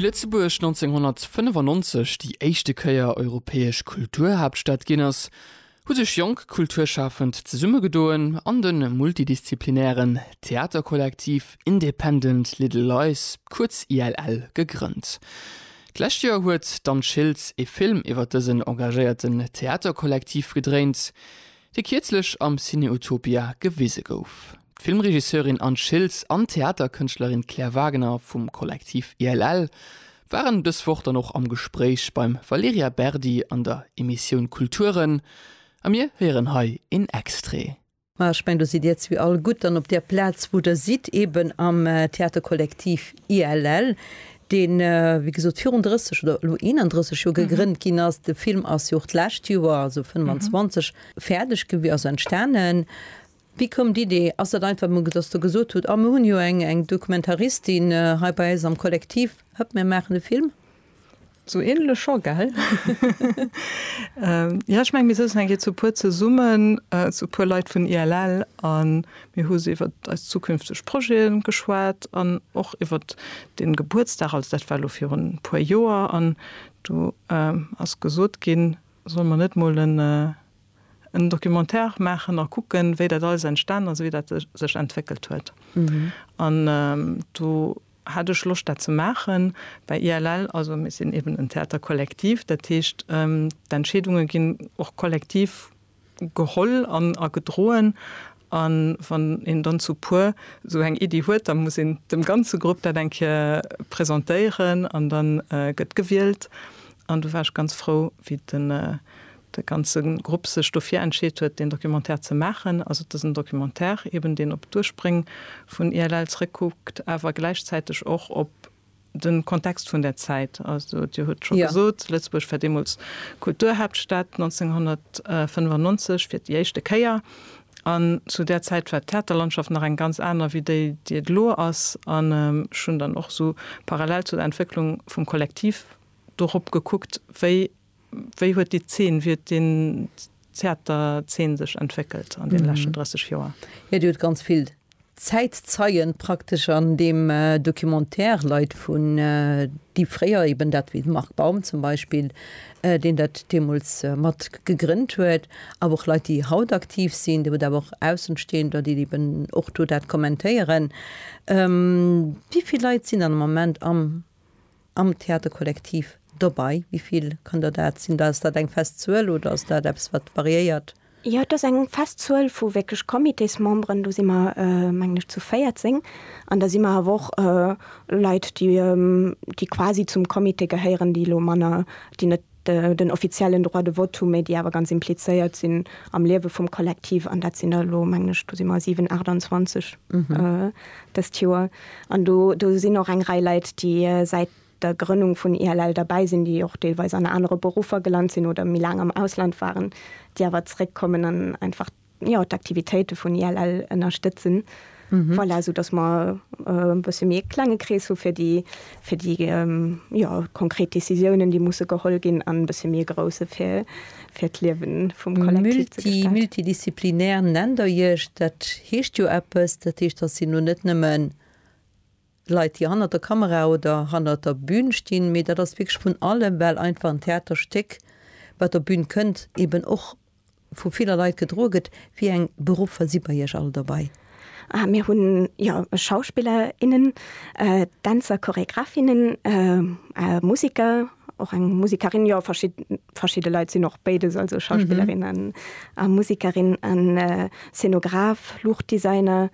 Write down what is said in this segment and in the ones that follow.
Wéi Lëtzebuerg 1995 déi éischte Kéier europäesch Kulturhaaptstad ginn ass, hu sech jonk Kulturschafend zesummegedoen an de multidisziplinären Theaterkollektiv Independent Little Lies, kuerz ILL, gegrënnt. D'lescht Joer huet d'Anne Schiltz e Film iwwer dësen engagéierten Theaterkollektiv gedréint. dee kierzlech am Cineutopia gewise gouf. D'Filmregisseurin Anne Schiltz an d'Theaterkënschtlerin Claire Wagner vum Kollektiv ILL waren dës Woch dann och am Gespréich beim Valerija Berdi an der Emissioun Kulturen a mir héieren hei een Extrait. Ma ech mengen, do sidd Dir zwee all gutt dann op där Plaz, wou Der sidd, eeben am Theaterkollektiv ILL, deen, wéi gesot, virun 30 oder elo 31 Joer gegrënnt ginn ass. De Film ass jo och d'lescht Joer, also 25, fäerdeg gewi-, also entstanen. Wéi koum d'Idee? Ass dat einfach emol, dass Der gesot hutt, ah, mir hunn jo eng, eng Dokumentaristin hei bei eis am Kollektiv, hëpp, mir maachen e Film? Sou änlech scho, gell? Jo, ech meng, mir souzen eng Kéier zu puer zesummen, zu puer Leit vun ILL, a Mir hu se iwwert eis zukünfteg Projete geschwat an och iwwert dee Gebuertsdag, also dat war elo virun e puer Joer. An do ass gesot ginn, solle mer net mol en Documentaire maachen a kucken, wéi dat alles entstan ass, wéi dat sech entwéckelt huet. An do hat ech Loscht, dat ze maachen. Bei ILL, also mir sinn eeben en Theaterkollektiv, dat heescht d'Entscheedunge ginn och kollektiv geholl an a gedroen an wann een dann zu puer esou eng Iddi huet, da muss een dem ganze Grupp dat eng Kéier presentéieren an dann gëtt gewielt an do war ech ganz frou wéi den de ganze Grupp sech dofir entscheet huet deen Documentaire ze maachen. Also et ass en Documentaire eben deen op d'Urspréng vun ILL zréckkuckt awer gläichzäiteg och op Den Kontext vun där Zäit, also Dir hutt scho gesot, Lëtzebuerg war deemools Kulturhaaptstad, 1995 fir déi éischte Kéier. An zu där Zäit war d'Theaterlandschaft nach eng ganz aner wéi déi, déi et elo ass. An ech hunn dann och esou parallel zu der Entwécklung vum Kollektiv dorop gekuckt, wéi. Wéi huet déi Zeen, wéi huet den Theaterzeen sech entwéckelt an deene leschten 30 Joer? Jo, Dir hutt ganz vill Zäitzeien praktesch an deem Documentaire, Leit vun, déi fréier eben dat, wéi de Marc Baum zum Beispill, deen dat deemools mat gegrënnt huet, awer och Leit, déi haut aktiv sinn. Dir hutt awer och Aussenstehender, déi eben och do dat kommentéieren. Wéi vill Leit sinn dann am Moment am am Theaterkollektiv dobei? Wéi vill kann der dat sinn? Ass dat eng fest Zuel oder ass dat eppes, wat variéiert? Jo, et ass eng fest Zuel vu wierklech Comitésmemberen. Do si mer, mengen ech, zu 14. An da si mer awer och Leit, déi quasi zum Comité gehéieren, déi elo manner, déi net Den offiziellen Droit de vote hu, mä déi awer ganz implizéiert sinn am Liewe vum Kollektiv, an dat sinn der elo, mengen ech, do si mer 7, 28 dëst Joer. An do sinn och eng Rei Leit, déi säit der Grënnung vun ILL derbäi sinn, déi och deelweis an anere Beruffer gelant sinn oder méi laang am Ausland waren, déi awer zeréckkommen an einfach jo, d'Aktivitéite vun ILL ënnerstëtzen. Voilà, soudass mer e bësse méi e klenge Krees hu fir déi, fir déi, jo, konkret Décisiounen, déi musse geholl ginn, an e bësse méi e grousse fir, fir d'Liewe vum Kollektiv ze gestalten. Multidisziplinär nennt Der Iech. Dat heescht jo eppes. Dat heescht, datt Dir elo net nëmmen Leit déi hannert der Kamera oder hannert der Bün stinn, mee dat ass wierklech vun allem, well einfach en Theaterstéck wat op Bün kënnt eben och vu viller Leit gedroe gëtt. Wéi eng Beruffer si bei Iech all dobei? Ah mir hunn jo Schauspiller, innen, Dänzer, Choregraph, innen, Musiker, och eng Musikerin, jo verschidde Leit sinn och béides, also Schauspillerin a Musikerin, an Szenograph, Luuchtdesigner.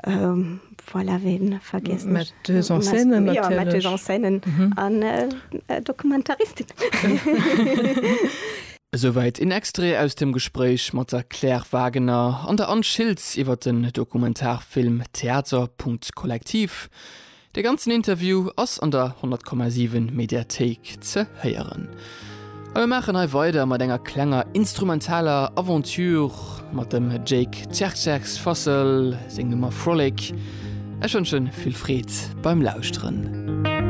Um, voilà, ween vergiess ech? Metteuse en scène natierlech. Jo, Metteuse en scène an Dokumentaristin. Esouwäit een Extrait aus dem Gespréich mat der Claire Wagener an der Anne Schiltz iwwer den Dokumentarfilm Theaterpunkt Kollektiv. De ganzen Interview ass an der 100,7 Mediathéik ze héieren. A mir maachen hei weider mat enger klenger instrumentaler Aventure mat dem Jake Tjerkjerks Fassel, seng Nummer Frolic. Ech wënschen vill Freed beim Lauschteren.